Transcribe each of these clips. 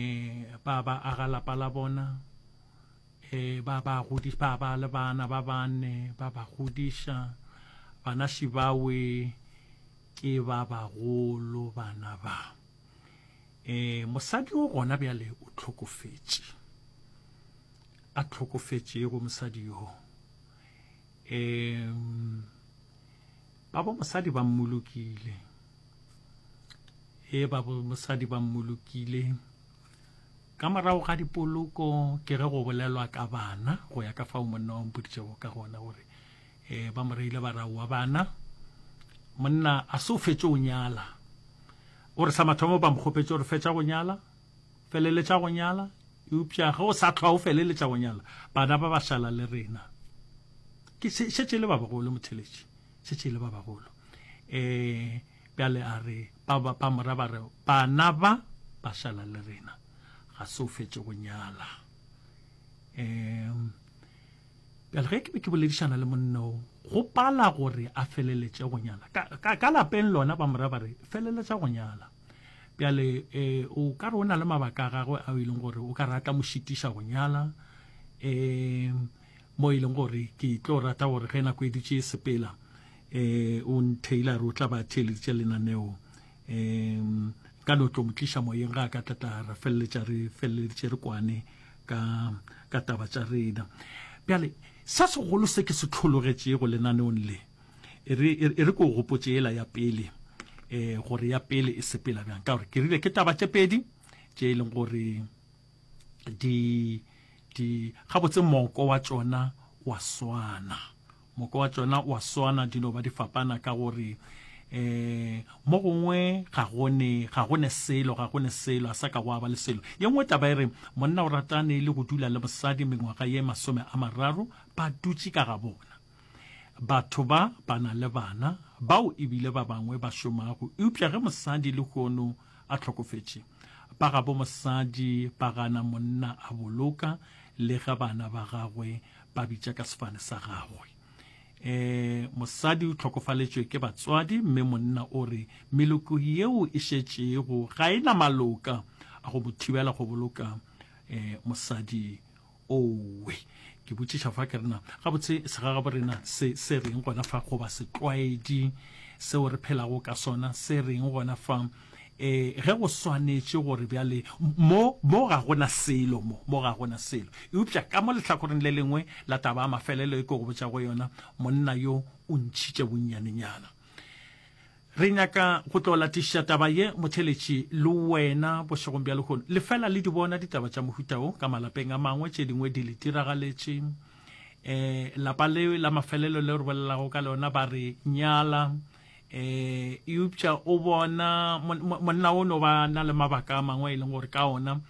e ba ba aga lapa la bona e ba ba godiša ba ba le bana ba bane ba ba godiša bana šibawe ke ba bagolo bana ba e mosadi o gona bjale o tlhokofetše a tlhokofetšego mosadi yo e Babo mosadi ba mmolokile. Ee, babo mosadi ba mmolokile. Ka morago ga dipoloko ke ge go bolelwa ka bana go ya ka fao monna wa mpoditšego ka gona gore eh ba mo reile barao wa bana monna a se o fetše o nyala o re sa mathomo ba mo kgopetše gore fetša go nyala feleletša go nyala, eupša ge o sa hlwa o feleletša go nyala, bana ba ba šala le rena. Ke se, šetše le ba bagolo, motheletši, šetše le ba bagolo. E, bjale a re, ba, ba, ba mora ba re, bana ba ba šala le rena, ga se o fetše go nyala. E, bjale ge ke be ke boledišana le monno go pala gore a feleletše go nyala ka, ka, ka lapeng lona ba mora ba re feleletša go nyala bjale um o ka re o na le mabaka a gagwe ao e leng gore o ka re a tla mo šitiša go nyala um mo e leng gore ke tlo rata gore ge nako e dutše e sepela um o ntailor o tla ba theeleditše lenaneo um ka no tlo mo tliša moyeng ga a ka tlatla ra feleletša re feleleditše re kwane ka ka taba tša rena bjale sa segolo se ke se tlhologetšego lenaneong le e re e re ko gopotše ela ya pele eh gore ya pele e sepela bjang ka gore ke rile ke taba tše pedi tše e leng gore di di gabotse moko wa tšona wa swana moko wa tšona wa swana di no ba di fapana ka gore eh mo gongwe ga gone ga gone selo ga gone selo a sa ka go aba le selo ye nngwe taba e re monna o ratane le go dula le mosadi mengwaga ye masome a mararo ba dutše ka ga bona Batho ba ba na le bana, bao e bile ba bangwe ba šomago, eupša ge mosadi lehono a hlokofetše, ba gabo mosadi ba gana monna a boloka le ge bana ba gagwe ba bitša ka sefane sa gagwe. E, mosadi o hlokofaletšwe ke batswadi, mme monna o re meloko yeo e šetšego ga e na maloka a go mo thibela go boloka e, mosadi Owe. Ke botšiša fa ke rena, gabotse segagaborena se se reng gona fa goba setlwaedi seo re phelago ka sona se reng gona fa e ge go swanetše gore bjale mo mo ga gona selo mo mo ga gona selo eupša ka mo lehlakoreng le lengwe la taba a mafelelo e ke go botša go yona monna yo o ntšhitše bonnyanenyana Re nyaka go tlo latišiša taba ye motheletši le wena bošegong bja lehono. Le fela le di bona ditaba tša mohuta wo ka malapeng a mangwe, tše dingwe di le diragaletše. E, lapa le la mafelelo le re bolelago ka lona ba re nyala. E, eupša o bona monna o no ba na le mabaka a mangwe e leng gore ka ona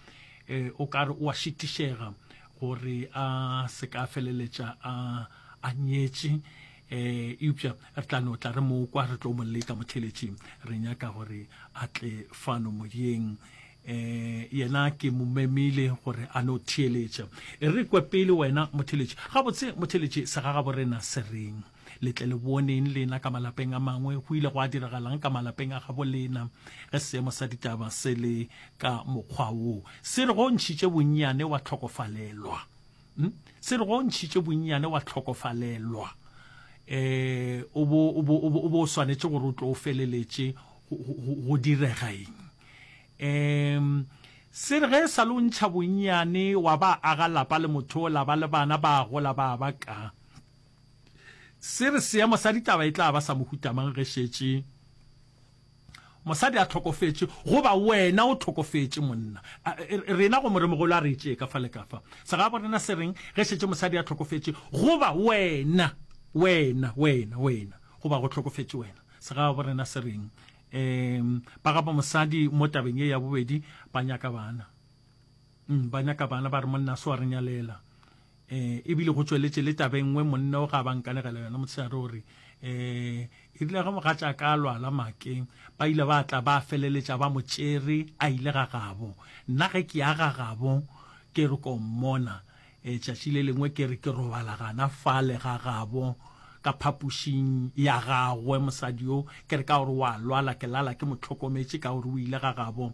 e, o ka re o a šitišega gore a se ka feleletša a, a nyetše. eh eupša re tla no tla re mo kwa re tlo mo leta motheletši re nyaka gore a tle fano moyeng eh yena ke mo memile gore a no theeletša e re kwe pele wena motheletši gabotse motheletši sa ga gabo rena se reng letle le boneng lena ka malapeng a mangwe go ile go a diragalang ka malapeng a gabo lena ge seemo sa ditaba se le ka mokgwa wo se re go ntšhitše bonnyane wa tlhokofalelwa Hm? Se re go ntšhitše bonnyane wa tlhokofalelwa um o bo- o bo- o bo- o bo o swanetše gore o tlo o feleletše go- go go- go direga eng um se re ge e sa le o ntšha bonnyane wa ba aga lapa le motho o la ba le bana ba gola ba ba ka se re seemo sa ditaba e tla ba sa mohutamang ge šetše Mosadi a tlhokofetše, goba wena o tlhokofetše monna. A, e, rena go moremogolo a re e tšee ka fa le ka fa. Segabo rena se reng ge šetše mosadi a tlhokofetše, goba wena, wena, wena, wena, goba go tlhokofetše wena? Segabo rena se reng? Um, ba gabo mosadi mo tabeng ye ya bobedi, ba nyaka bana. Mm, ba nyaka bana, ba re monna a se wa re nyalela. E bile go tšweletše le taba e nngwe monna o ga ba nkanegela yona motshegare o re, E rile ge mogatšaka a lwala make, ba ile ba tla ba feleletša ba mo tšere a ile ga gabo. Nna ge ke ya ga gabo ke re ko mmona, tšatši le lengwe ke re ke robala gana fale ga gabo ka phapošing ya gagwe mosadi yo, ke re ka gore o a lwala ke lala ke mo hlokometše ka gore o ile ga gabo.